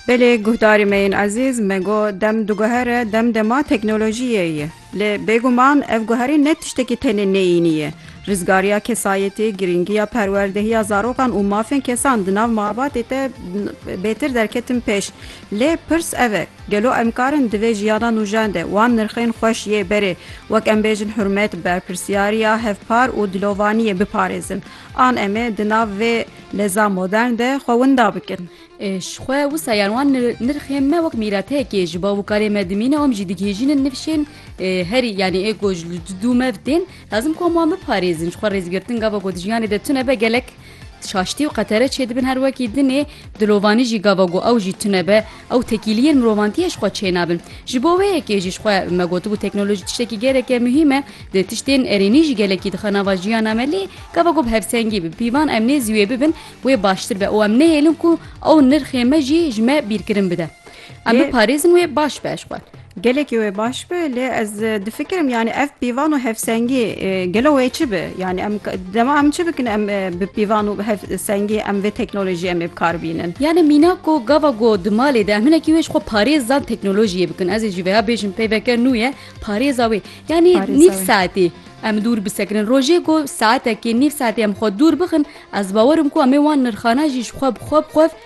Belê guhdarê me yên ezîz, me got dem diguhere, dem dema teknolojiyê ye. Lê bêguman ev guherîn ne tiştekî tenê neyînî ye. Rizgariya kesayetî, girîngiya perwerdehiya zarokan û mafên kesan di nav malbatê de bêtir derketin pêş. Lê pirs ev e, gelo em karin di vê jiyana nûjen de wan nirxên xweş yê berê, wek em bêjin hurmet, berpirsyariya hevpar û dilovaniyê biparêzin? An em ê di nav vê leza modern de xwe winda bikin. Ji xwe wisa yan wan nirxê me wek mîretekê ji bav û karê me dimîne om jî digihêjînin nifşên herî yanî ê ku ji dû me bi tên lazim ku em wan biparêzin ji xwe rêzgirtin gava ku di jiyanê de tune be gelek şaştî û qetere çêdibin her wekî dinê dilovanî jî gava ku ew jî tune be Ew tekîliyên mirovantiyê ji xwe çênabin. Ji bo wê yekê jî ji xwe me gotibû teknolojî tiştekî geleke muhîm e. Di tiştên erênî jî gelekî dixe nava jiyana me lê gava ku bi hevsengî, bi pîvan em nêzî wê bibin wê baştir be û em nehêlin ku ew nirxê me jî ji me bîrkirin bide. Em biparêzin wê baş be ji xwe. Gelekî wê baş bi lê ez difikirim yanî ev pîvan û hevsengî gelo wê çi bi yanî em dema em çi bikin em bi pîvan û hevsengî em vê teknolojiyê em ê bi kar bînin. Yanî mîna ku gava ku di malê de em hinekî wê ji xwe parêz dan teknolojiyê bikin ez ê jî vêya bêjim peyveke nû ye parêza wê yanî nîv saetî em dûr bisekirin rojê ku saetekî nîv saetî em xwe dûr bixin ez bawer im ku em ê wan nirxana jî ji xwe bi xwe bi xwe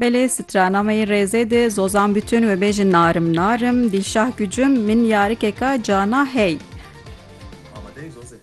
Belê strana me yê rêzê di zozan bütün wê bêjin narim narim dîşah gücüm min yarikeka cana hey. Amadeyê zozê.